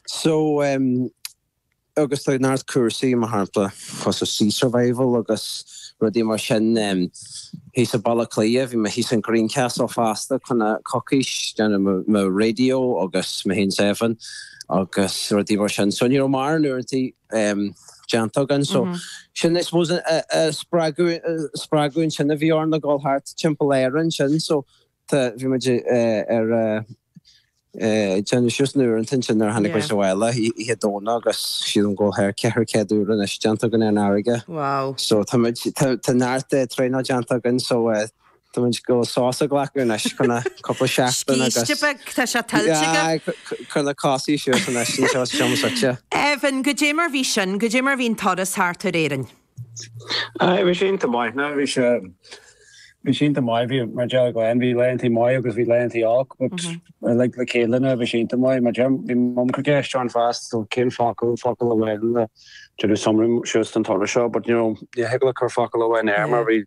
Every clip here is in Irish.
So, em, agus tá neart cúrsaí, mar shampla, cosúil sea survival agus rudaí mar sin, em, thíos i Baile Átha Cliath, bhí mé thíos in Greencastle fosta fá choinne coicís, déanamh mo, mo radio agus mo shín seven agus rudaí mar sin. So ní raibh mórán uaireantaí, em, déanta againn. So sin, I suppose, a, a, a spreagadh, a spreagadh ansin a bhí orainn a dhul thart timpeall Éireann sin. So. Tá, bhí muid ag déanamh suas na huaireantaí nuair tháinig muid abhaile oíche Domhnaigh agus sílim go bhfuil thar ceithre céad uair anois déanta againn ar an fharraige. Wow. So tá muid, tá neart traenáil déanta againn so tá muid ag gabháil sos a ghlacadh anois fá choinne cúpla seachtain agus. Scíste beag, tá sé tuillte agaibh. Cuir na cosa suas anois, insa seomra suite. Evan, cad é mar bhí sin, cad é mar bhí an turas thart ar Éirinn? Bhí sé iontach maith ná bhí sé, bhí sé iontach maith, bhí mar a deir Glen, bhí laethanta maith agus bhí laethanta olc but uilig le chéile ná bhí sé iontach maith, mar a deir bhí Mum ag cur ceist orainn fosta so cén focal, focal amháin le, déanamh summary suas den turas seo but you know ní thig leat cur focal amháin air mar bhí,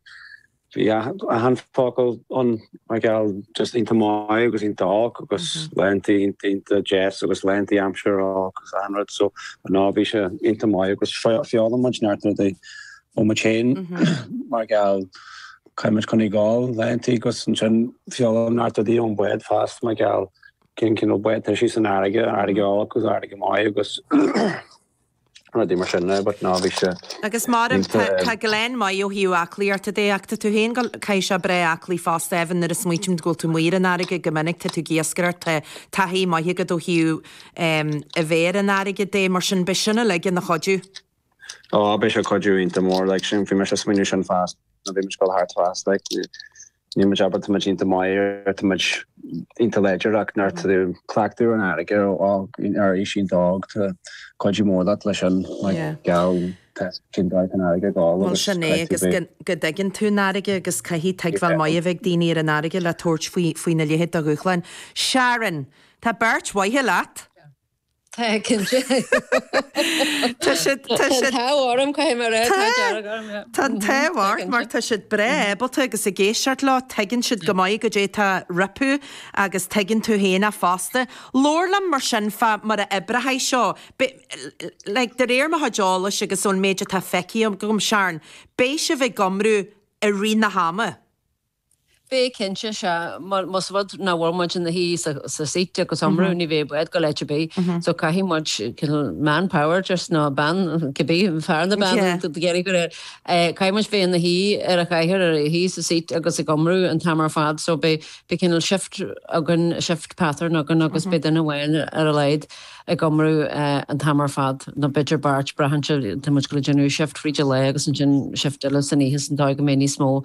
Bhí achan focal ann mar gheall just iontach maith agus iontach olc agus laethanta iontach deas agus laethanta aimsire olc agus achan rud so ná bhí sé iontach maith agus foghlaim muid neart rudaí ó muid féin mar gheall caithfidh muid coinneáil ag gabháil laethanta agus ansin foghlaim neart rudaí ón bád fosta mar gheall cén cineál bád tá sí san fharraige, fharraige olc agus fharraige maith agus rudaí mar sin now but ná bhí sé Agus mairim, tá, línte. tá Glen maith ó thaobh aclaíochta de ach tá tú féin go, caithfidh sé breá aclaí fosta Evan nuair a smaoitim go bhfuil tú amuigh ar an fharraige go minic tá tú ag iascaireacht tá taithí maith agat ó thaobh em a bheith ar an fharraige de mar sin beidh sin uilig ina chuidiú. Ó, beidh sé cuidiú iontach mór like sin bhí mise smaoineamh sin fosta nuair a bhí muid ag gabháil thart fosta like Níl muid abair, tá muid iontach maith ar, tá muid iontach láidir ach nuair atá tú cleachtadh ar an fharraige ar fhág ar aois iontach óg, tá cuidiú mór leat leis sin mar gheall tchíonn tú an fharraige go holc agus caithfidh tú bheith. Bhuel sin é agus go dtuigeann tú an fharraige agus caithfidh tuigbheáil maith a bheith ag daoine ar an fharraige le tabhairt faoina leithéid de dhúshlán. Sharon, tá beirt mhaith leat. Tá cinnte. Tá siad, tá siad. Tá an t-ádh orm, caithfidh mé a rá, an t-ádh dearg orm, yeah. Tá an t-ádh ort mar tá siad breá ábalta agus ag éisteacht leo tuigeann siad go maith cad é tá rompu agus tuigeann tú féin fosta. Labhair liom mar sin fá mar a oibreochaidh seo, beidh, like, de réir mo chuid eolais agus ón méid atá feicthe agam, Sharon, beidh sibh ag iomramh i rith na hama. Beidh cinnte, sea, mar más rud nach bhfuil muid ina suí sa seat agus ag iomramh, ní bheidh an bád ag gabháil áit ar bith. So caithfidh muid cineál man power just nó bean, cibé, fear nó bean a d'éirigh go léir. Caithfidh muid bheith ina suí ar an chathaoir, ina suí sa seat agus ag iomramh an t-am ar fad. So beidh cineál shift againn, shift pattern againn agus beidh duine amháin ar a laghad ag iomramh an t-am ar fad. Nó b'fhéidir beirt braitheann sé, tá muid ag gabháil a dhéanamh shift fríd an lae agus ansin shift eile san oíche sa dóigh go mbeidh níos mó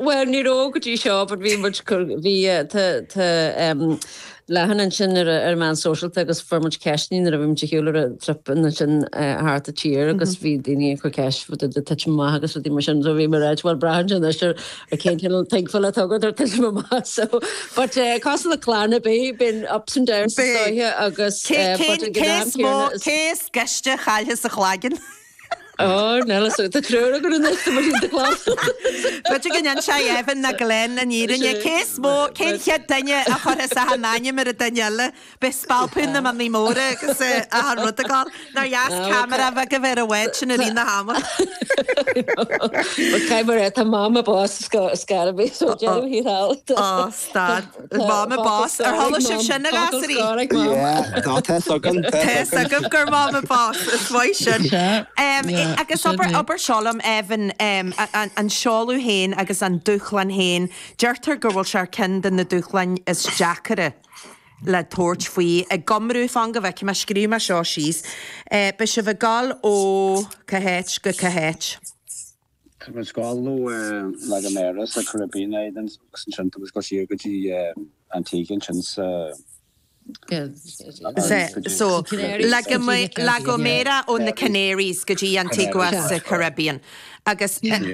Bhuel, ní raibh go dtí seo, but bhí muid, bhí, tá, tá ehm leathanach ansin ar na, ar na meáin shóisialta agus fuair muid ceisteannaí nuair a bhí muid ar shiúl ar an trip ansin eh thart an tír agus bhí daoine ag cur ceist fá dtaobh de tuitim amach agus rudaí mar sin so bhí muid ag ráit bhuel braitheann sé anois ar ar cén cineál tuigbheáil atá agat ar tuitim amach so but eh cás na Clanna Bé been ups and downs Bhí. stoithe agus Cé eh but cé an cé gnáth is mó céanna is cé is gaiste a chailleas an chloigeann? Ár nEillis, tá treoir againn in Oifig na Muiríne do Ghlaschú. B'fhéidir go n-inseodh Evan nó Glen an fhírinne. Cé is mó, cén chéad duine a chuirfeas achan ainm ar an duine eile? Beidh spalpadh na mionnaí móra agus achan rud ag gabháil. Nár dheas camera beag a bheith ar an bhád sin i rith an ama. Tá mammy boss is scair a bhí, so deirfiúr thall. Dad, Mammy an boss. Ar chuala sibh sin, a ghasúraí? Yeah, ná tá fhios agam, tá fhios agam. Tá fhios agam gur Mammy an boss, is maith sin. Agus abair seo liom, Evan, an seoladh féin agus an dúshlán féin, deirtear go bhfuil sé ar cheann de na dúshláin is deacaire le tabhairt faoi ag iomramh, fan go bhfeicfidh mé, scríobh mé seo síos, beidh sibh ag gol ó cá háit go cá háit. Tá muid ag gabháil ó La Gomera sa Caribbean é den saghas, ansin tá muid ag gabháil siar go dtí Antigua, ansin sa Canaries, go dtí Antigua sa Caribbean agus.